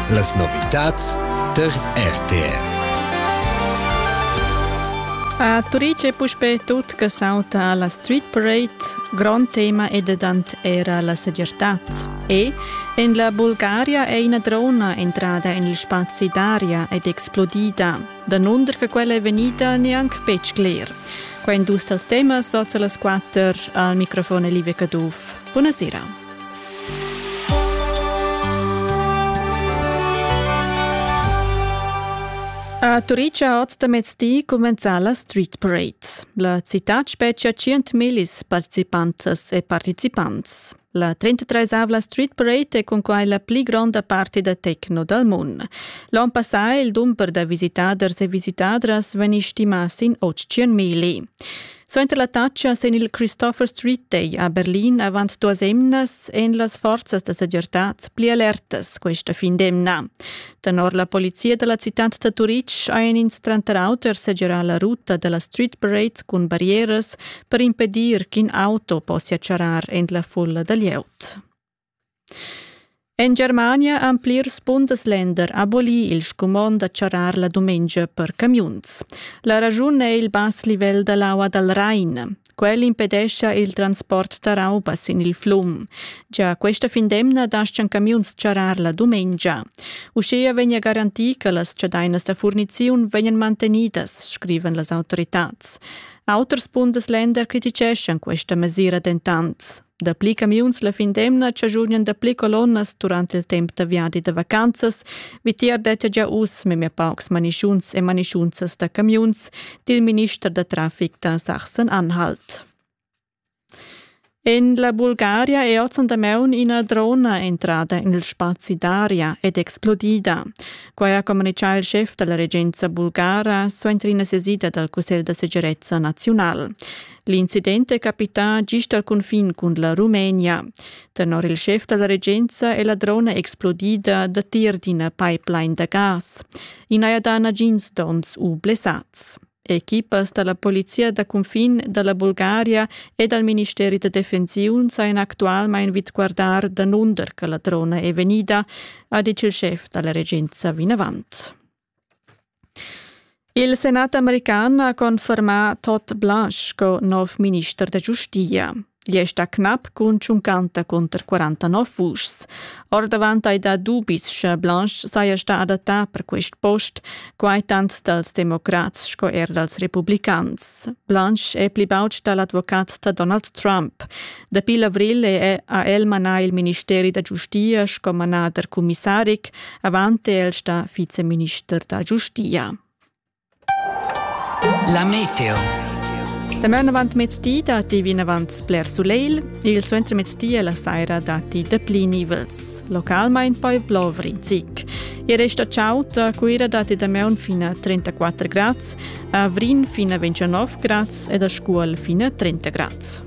Las novitads tar RTF. A Turice è puspè tut che sauta alla Street Parade. Grond tema è dedant era la segirtad. E en la Bulgaria è ina drona entrada en il spazi d'aria ed explodida. Danunder che quella è vegnida neanche betg cler. Qua in dus dals temas sozza las quatter al microfon Elivia Caduff. Buonasera. A Turitg ha oz da mezdi cumenzà la Street Parade. La citad spetgia 100.000 participantas e participants. La 33-avla Street Parade è cunquai la pli gronda parti da techno dal mund. L'onn passà il dumber da visitaders e visitadras vegni stimà sin 800.000. Suenter l'attacca sin il Christopher Street Day a Berlin avant duas emnas èn las forzas da segirtad pli alertas questa fin d'emna. Tenor la polizia da la citad da Turitg hajan ins tranter auter segirà la ruta da la Street Parade cun barrieras per impedir ch'in auto possia charrar en la fulla da glieud. En Germania han plirs Bundesländer abolì il scumond da charrar la dumengia per camiuns. La raschun è il bass livel da l'aua dal Rhein. Quel impedescha il transport da rauba sin il flum. Già questa findemna dastgan camiuns charrar la dumengia. Uschia vegnia garantì che las chadainas da furniziun vegnan mantenidas, scrivan las autoritads. Auters Bundesländer criticeschan questa mesira dentant. Dapli camiuns la fin d'emna chagiunian dapli colonnas durant il temp da viadi da vacanzas. Vitier dettia gia uss memia paucs manischuns e manischunzas da camiuns, dil minister da traffic da Sachsen-Anhalt. En la Bulgaria è ozendi maun ina drona entrada en il spazi d'aria ed explodida. Quai ha communitgà il schef da la regenza bulgara suenter ina sesida dal Cussegl da segirezza naziunal. L'incident è capità gist al cunfin cun la Rumenia. Tenor il schef da la regenza è la drona explodida datier d'ina pipeline da gas. In haja dà nagins donns u blessats. Equipas da la polizia da cunfin da la Bulgaria e dal ministeri da defensiun sajan actualmain vid guardar danunder che la drona è vegnida, ha ditg il schef da la regenza vinavant. Il senat american ha confermà Todd Blanche sco nov minister da giustia. Igl è stà cnap cun tschuncanta cunter 49 vuschs. Ordavant hai dà dubis, sche Blanche saja stà adattà per quest post, quai tant dals democrats sco er dals republicans. Blanche è pli baud stà l'advocat da Donald Trump. Dapi l'avril ha el manà il ministeri da giustia sco manader cumissaric, avant è el stà viceminister da giustia. La meteo. Da maun avant mezdi datti vinavant sbler sulegl, il suentermezdi e la saira datti dapli nivels. Localmain poi blovrin zic. Il resto ciao da Cuira datti da maun fino a 34 grads, a Vrin fino a 29 grads ed a Scuol fino a 30 grads.